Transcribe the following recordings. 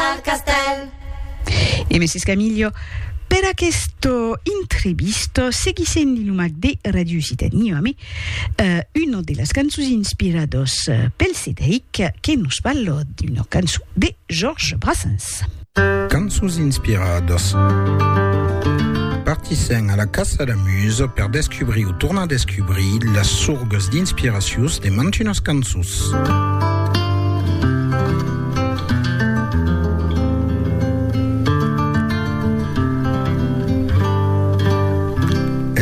al castèl. E Mrs. Camillo, per aqueste intrevistot, seguissent li nomac de Radio Occitania, me una de las cançons inspiradors pel Cedric, que nos parla d'una cançon de Georges Brassens. Cançons inspiradas. Partissèm a la caça la Muse per descubrir o tornar descubrir las sorgas d'inspiracions de mantunas cançons.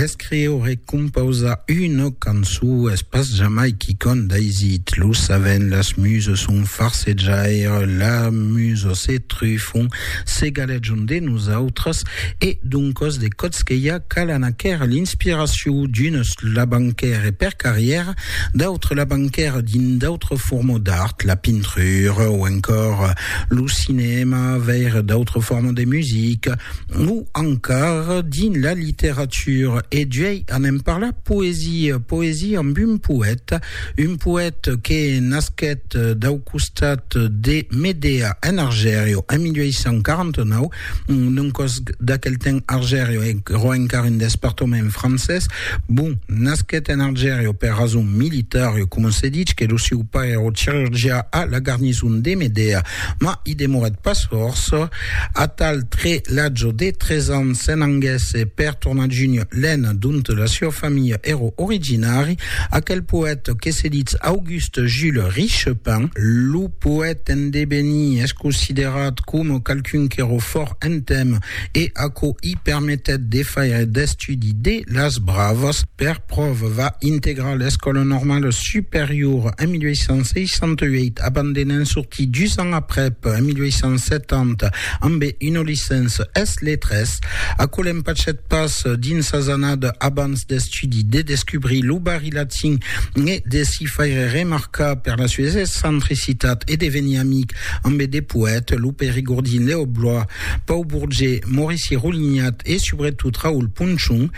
Escriure e compausar una cançó es pas jamai quicòm d'aisit, lo saben, las musas son farsejaires, las musas se trufan Se galejon de nosautres e doncos de Cotskella cal anar quèr l'inspiracion d'unes labanquèr e per carrièr d'autres labanquèr dins d'autres formes d'art, la pintrura o encòr lo cinèma, veire d'autres formes de musica o encara dins la literatura e d'uèi anem parlar poesia, poesia amb un poèta Un poète que nasquèt dau costat de Medea en Argèrio en 1849, non còs d'aquel temps Argèrio èrò encara un despartament francés, bon, nasquèt en Argèrio per rason militària, coma se ditz que lo sieu pair èrò chirurgià a la garnison de Medea, mas i demorèt pas fòrça. Atal tre l'ajo de tres ans se'n anguèsse per tornar Junio Len dont la sua familha ero originari, aquel poète que se ditz Auguste Jules Richepin. Lo poète en devenir es considerat coma qualqu'un qu'ero fòrt en temps e aquò i permetèt de faire d'estudi de las bravas per Prov. Va integrar l'Escòla Normala Superiora en 1868, abandenant sortir dus ans aprèp, en 1870, ambe una licença es letras. Aquò l'empachet pas dins sas annadas abans d'estudi de descubrir lo barri latin e de s'i faire remarcar per la sues excentricitat e de venir amic ambe de poètes, lo Perigordin Lèo Blois, Pau Bourget, Maurici Roulignat e subretot Raoul Punchon.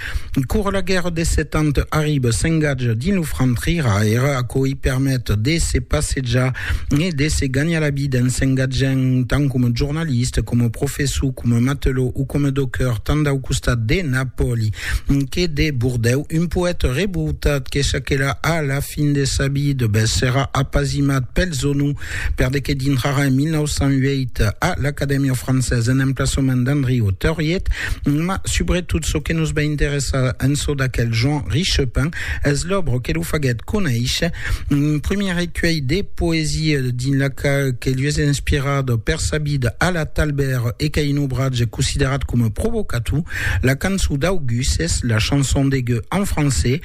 Cor la guèrra de set ans arriba, s'engatja dins lo franc triraire, aquò i permet de se passejar e de se ganhar la vida en s'engatjant tant coma jornalista, coma professor, coma matelò o coma docker, tant dau costat de Napòli que de Bordèu. Un poèta revoltat que çaquelà a la fin de sa vida, bèth serà apasimat pels onors Per de que dintrarà en 1908 a l'Acadèmia Française en emplaçament d'Andriu Tauriet, ma subretot çò que nos va interessar en çò d'aquel Jean Richepin es l'òbra que lo faguèt conéisher, un primièr recuelh de poesia dins la qual que li es inspirat per sa vida a la Talbèr e qu'a un obratge considerat coma provocator, la cançon d'Auguste, la chanson de Gueux en francés,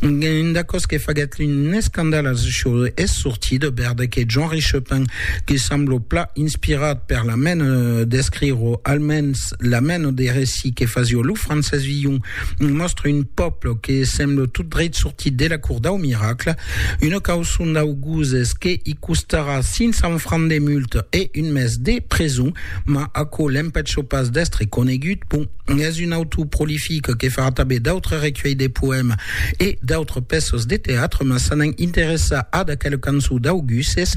Una còs que faguèt un escandal als jòus es sortir de bèrde que Jean Richepin, que semblo pla inspirat per la mena d'escrire o almens la mena de recit que fasió lo Francés Villon, mòstre un pòble que semblo tot dreit sortit de la Cour dau Miracle, una causon dau Goses que i costarà 500 francs de multa e un mes de preson, mas aquò l'empècho pas d'èstre conegut, bon. Es un autor prolific que fa tanben d'autres recuelhs de poèmes e d'autres pèças de teatre, mas s'anant interessar a d'aquel cançon d'Auguses,